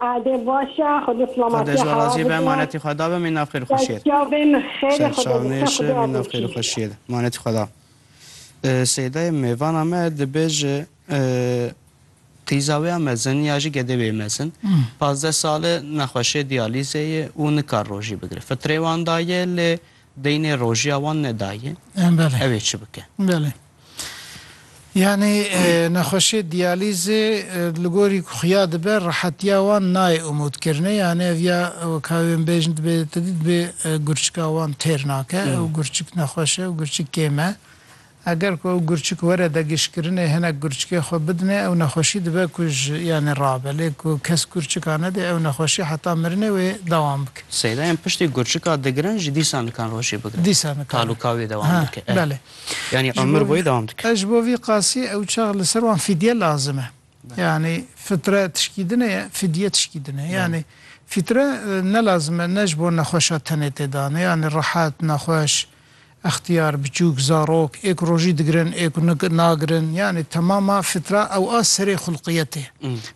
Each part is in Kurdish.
Ade baş e, xwe bi silamatiya hewa bidin. Xwedê ji we razî be, manetî xwe da be, mîna xêr û xweşiyê ye. Serçavê min xêr e, xwedê li ser xwe bê adoşî. Serçavê min xêr û xweşiyê ye, manetî xwe da. Seydayê mêvana me dibêje, Qîza wê ya mezin ya jî gedê wê yê mezin pazdeh sal e, nexweşê diyalîzê ye û nikar rojî bigire. Fitrê wan daye lê deynê rojiya wan nedaye. Ew ê çi bike? Yanî nexweşê diyalîzê li gorî ku xuya dibe rehetiya wan nayê umûdkirinê yanî ev ya weka wê min bêjin dibê te dî dibê gurçika wan têr nake. Ew gurçik nexweş e, ew gurçik kêm e. Eger ku ew gurçik were degişkirinê hinek gurçikê xwe bidinê ew nexweşî dibe ku ji yanî rabe. Lê ku kes gurçika nedê ew nexweşî heta mirinê wê dewam bike. Seydayên piştî gurçika digirin jî dîsa nikan rojê bigirin. Dîsa nikan. Talûka wê dewam bike. Belê. Yanî emir boyê dewam dike. Ez ji bo vî qasî ew çax li ser wan fîdye lazim e. Yanî fitre tişkî din e, fîdye tişkî din e. Yanî fître ne lazim e ne ji bo nexweşa tenê tê danê. Yanî rehet, nexweş, extiyar, biçûk, zarok ê ku rojî digirin ê ku nagirin yanî temama fîtra ew a serê xulqiyetê ye.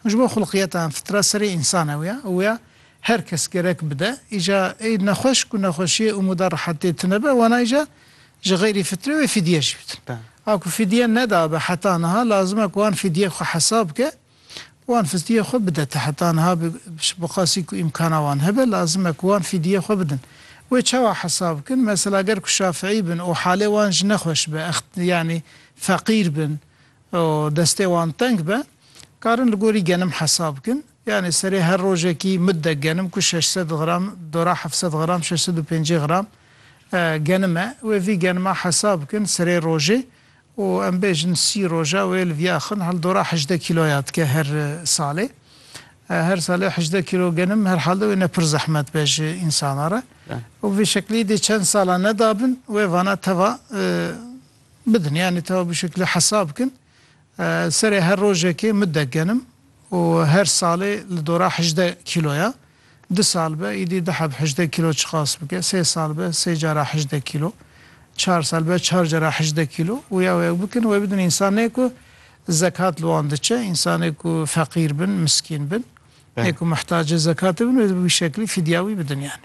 Ew ji bo xulqiyeta yan fîtra serê însan ew ya û ya her kes gerek bide. Îja ê nexweş ku nexweşiyê û mûda rehetê tune be wana îja Ji xeyrî fitre wê fidye jî bidin. A ku fidye nedabe heta niha lazim e ku wan fidyeyê xwe hesab bike û wan fidyeyê xwe bide. Te heta niha bi bi qasî ku îmkana wan hebe lazim e ku wan fidyeyê xwe bidin. Wê çawa hesab bikin? Mesela ger ku şafîî bin û halê wan jî nexweş be ext yanî feqîr bin û destê wan teng be karin li gorî genim hesab bikin. Yanî serê her rojekî mudde genim ku şeş sed gram dora heft sed gram şeş sed û pêncî gram genim e wê vî genima hesab bikin serê rojê û em bêjin sî roja wê li vî axin hildora hejdeh kîloya dike her salê. Her salê hejdeh kîlo genim herhalde wê ne pir zehmet be ji însana re û vê şeklî dê çend sala nedabin wê vana teva bidin yanî teva bi şeklî hesab bikin. Serê her rojekê midek genim û her salê li dora hejdeh kîlo ye. Du sal be îdî du heb hejdeh kîlo çiqas bike, sê sal be sê cara hejdeh kîlo, çar sal be çar cara hejdeh kîlo û ya wek bikin. Wê bidin însan ne ku zekat li wan diçe, însanê ku feqîr bin, miskîn bin, ne ku muhtace zekatê bin wê di bi wî şeklî fîdya wî bidin yani.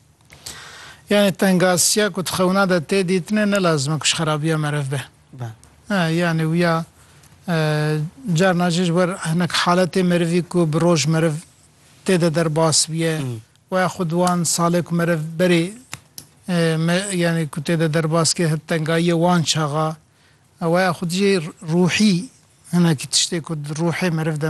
Yanî tengasiya ku di xewna de tê dîtine ne lazim e ku ji xerabiya meriv be. Be. Yanî wiya carna jî ji ber hinek haletê merivî ku bi roj meriv tê de derbas bûye û ya xwe di wan salê ku meriv berê yanî ku tê de derbas kir hit tengayiyê wan çaxa. Ew ya xwe jî ruhî hinekî tiştê ku di ruhê meriv de